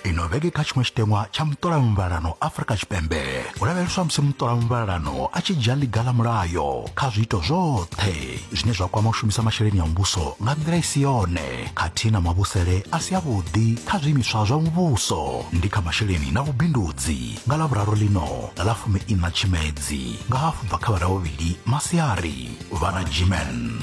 ino vhege kha tshiṅwe tshiteṅwa tsha muṱola muvhalano afrika tshipembe hu lavheleswa musi muṱola muvhalano a tshi dzhia ḽiga ḽa mulayo kha zwiito zwoṱhe zwine zwa kwama u shumisa masheleni a muvhuso nga nḓila i si yone khathihi na mavhusele a si avhuḓi kha zwiimiswa zwa muvhuso ndi kha masheleni na vhubindudzi nga ḽa vhuraru ḽino nga ḽa fumi ina tshimedzi nga hafu bva kha vhara vhuvhili masiari vhana jimen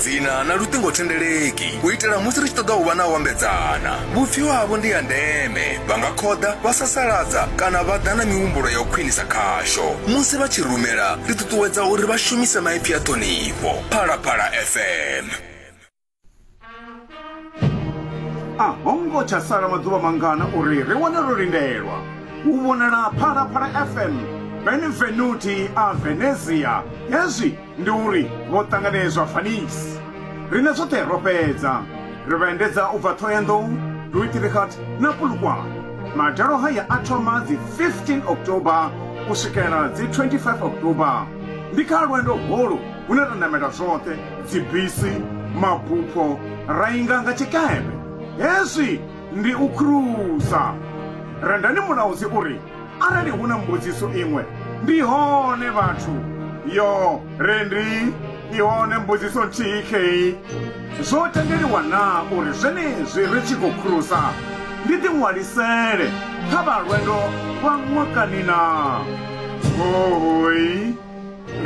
dzina na luṱingothendeleki u itela musi ri tshi ṱoḓa u vha na u ambedzana vhupfiwa havho ndi ya ndeme vha nga khoḓa vha sasaladza kana vha ḓa na mihumbulo ya u khwinisa khasho musi vha tshi rumela ri ṱuṱuwedza uri vha shumise maipfi a ṱhonifho phalaphala fm a ho ngo tsha sala maḓuvha mangana uri ri wane ro lindelwa u vhonala phalaphala fm benvenuti a venezia hezwi Ndi uri vho ṱanganedzwa Vanice. Riṋe zwoṱhe ro fhedza ri vha endedza u bva Thohoyandou, Duitrichard na Polokwane. Madalo haya a thoma dzi 15 October u swikela dzi 25 October. Ndi kha lwendo holu hune ra namela zwoṱhe, dzibisi, mabupho, ra inga nga tshikepe. Hezwi ndi u khurusa. Rendani Mulaudzi u ri, Arali hu na mbudziso iṅwe, ndi hone vhathu. Yo, re ndi i hone mbudziso nthihi khei. Zwo tendeliwa na uri zwenezwi ri tshi khou khulusa ndi ḓiṅwalisele kha vha lwendo lwa ṅwakani na? Hohoi.